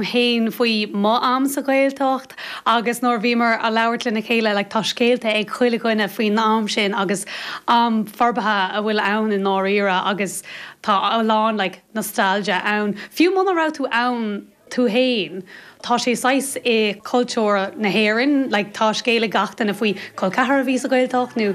féin faoi mo am sa Ghaeltacht agus nuair a bhíomar a' labhairt lena chéile like tá scéalta ag chuile dhuine faoin am sin agus am forbartha atá ann i ndáiríre agus tá a lán like nostalgia ann fiú muna raibh tú ann tú fhéin tá sé saghas i cultúr na hÉireann like tá scéal ag gach duine faoi col ceathrar a bhí sa Ghaeltacht nó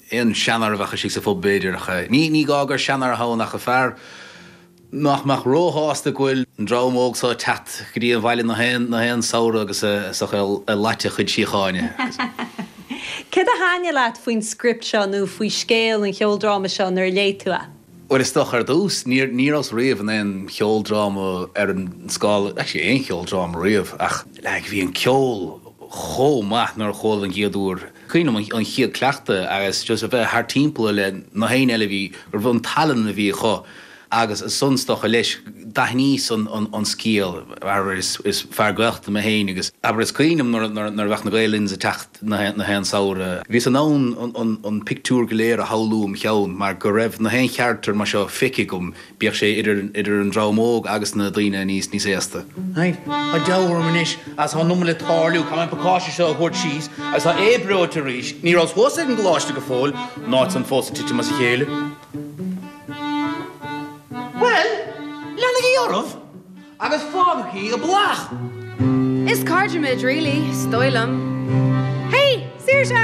An seanfhear a bheadh istigh sa phub b'fhéidir, ní gá gur seanfhear a bheadh ann ach fear nach mbeadh róshásta go bhfuil an dream óg so ag teacht go dtí an bhaile nach aon samhradh agus ag lot a chuid síochána. Cad a thaitin leat faoin script seo nó faoi scéal an cheoldráma seo nuair a léigh tú é? Bhuel is dócha ar dtús, ní rabhas riamh in aon cheoldráma ar an scála, actually aon cheoldráma riamh ach like bhí an ceol chomh maith nuair a chuala an chéad uair, Cuimhním an chéad cleachtadh agus just a bheith thart timpeall le nach éinne eile bhí, go raibh an tallann a bhí acu agus ansan is dócha leis, d'aithníos an scéal, abair is fear Gaeltachta mé féin agus, abair is cuimhin liom nuair a bheadh na Gael Linns ag teacht nach aon samhradh, bhíos in ann an pictiúr go léir a shamhlú im cheann mar go raibh nach aon charachtar mar seo feicthe agam Bíodh sé idir an dream óg agus na daoine níos aosta. Tá deifir orm anois agus tá an iomad le tarlú. Caithfidh mé an pacáiste seo a thabhairt síos agus tá Aodh breoite arís. Ní rabhas thuas ag an gcoláiste go fóill, an áit san fós ag titim as a chéile. Leanaigí oraibh agus fágaigí a blag! Is cairde muid really, 's dóigh liom. Hey! Saoirse!